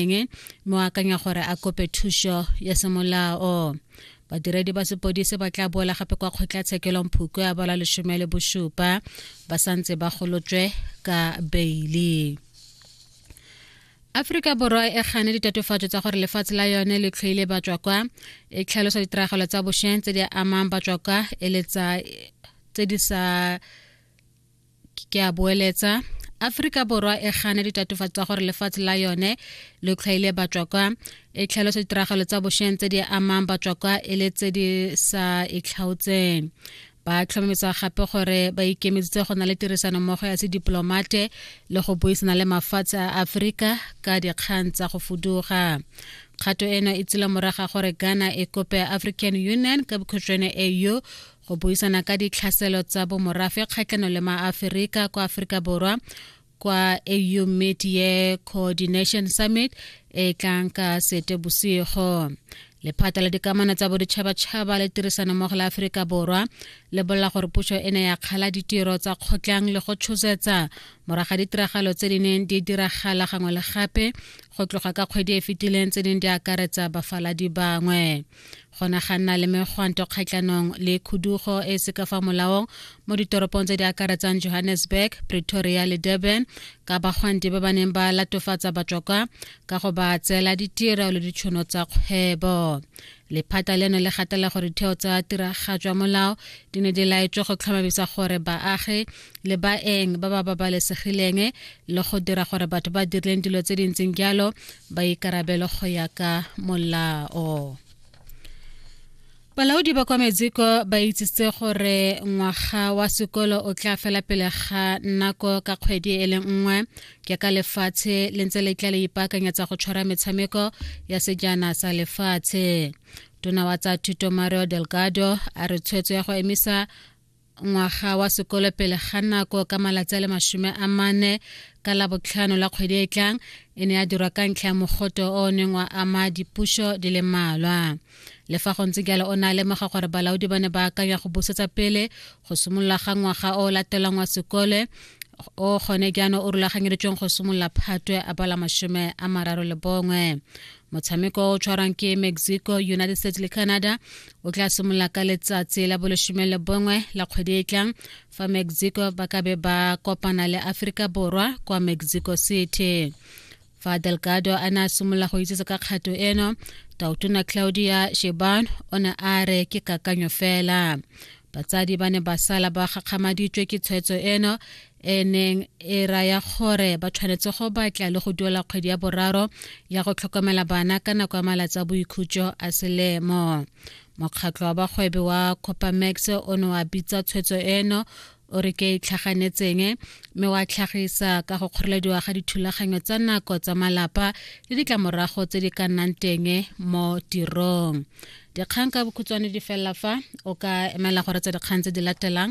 eng mme o akanya gore a kope thuso ya semolao badiredi ba sepodise ba tla boela gape kwa kgotlatshekelong phukwe ya bola lesome le bosupa ba santse ba golotswe ka beili aforika borwa e gane ditatofatso tsa gore lefatshe la yone le tlhoile batswakwa e tlhalosa ditiragalo tsa bosheng tse di amang batswakwa e le tsa tse di sa ke a boeletsa aforika borwa e gana ditatofatso tsa gore lefatshe la yone le tlhwaile batswakwa e tlhalosa ditiragalo tsa bosheng tse di amang batswakwa e le tse di sa itlhaotseng ba tlhomamisa gape gore ba ikemisitse go na le tirisano mmogo ya sedipolomate le go buisana le mafatshe a aforika ka dikgang tsa go fuduga kgato eno e tsile moraga gore ghana e kope african union ka bokhutshwane au go buisana ka ditlhaselo tsa bomorafe kgatlhano le maaferika kwa aforika borwa kwa au media coordination summit e tlang ka sete bosigo lephata la dikamano tsa boditšhabatšhaba le tirisanommogo la aforika borwa le bolela gore puso e ne ya kgala ditiro tsa kgotlang le go tshosetsa moraga ditiragalo tse di neng di diragala gangwe le gape go tloga ka kgwedi e fetileng tse ding di akaretsa bafaladi bangwe go ne ga nna le megwanto kgatlhanong le khudugo e e se ka fa molaong mo ditoropong tse di akaretsang johannesburg pretoria le durban ka bagwanti ba ba neng ba latofatsa batswakwa ka go ba tseela ditiro le ditšhono tsa kgwebo lephata leno le gatela gore ditheo tsa tiragatšwa molao di ne di laetswe go tlhomamisa gore baagi le baeng ba ba babalesegileng le go dira gore batho ba dirileng dilo tse di ntseng jalo ba ikarabelo go ya ka molao balaodi ba kwa metsiko ba itsitse gore ngwaga wa sekolo o tla fela pele ga nako ka kgwedi e le nngwe ke ka lefatshe le ntse le tla le ipaakanyetsa go tshwara metshameko ya sejana sa lefatshe tona wa tsa thuto mario delgado a re tshwetso ya go emisa ngwaga wa sekolo pele ga nako ka malatsi a le masome a mane ka labotlhano la kgwedi e tlang e ne ya dirwa ka ntlha ya mogoto o o neng wa ama dipuso di le mmalwa le fa go ntse jalo o ne a lemoga gore balaodi ba ne ba akanya go busetsa pele go simolola ga ngwaga o o latelang wa sekole o gone jaanong o rulaganyeditsweng go simolola phatwe a bala masome a mararo le bongwe motshameko o tshwarwang ke mexico united states le canada o tla simolola ka letsatsi la bolesome le bongwe la kgwedi e tlang fa mexico ba ka be ba kopana le aforika borwa kwa mexico city fa delgado a ne a simolola go itsetse ka kgato eno tautona claudia sheban o ne a re ke kakanyo fela batsadi ba ne ba sala ba gakgamaditswe ke tshwetso eno e neng e raya gore ba tshwanetse go batla le go duela kgwedi ya boraro ya go tlhokomela bana ka nako ya malatsi a boikhutso a selemo mokgatlho wa bagwebi wa copamax o ne wa bitsa tshwetso eno o re ke itlhaganetseng mme wa tlhagisa ka go kgorelediwa ga dithulaganyo tsa nako tsa malapa le ditlamorago tse di ka nnang teng mo tirong dikgang ka bokhutshwane di felela fa o ka emela gore tsa dikgang tse di latelang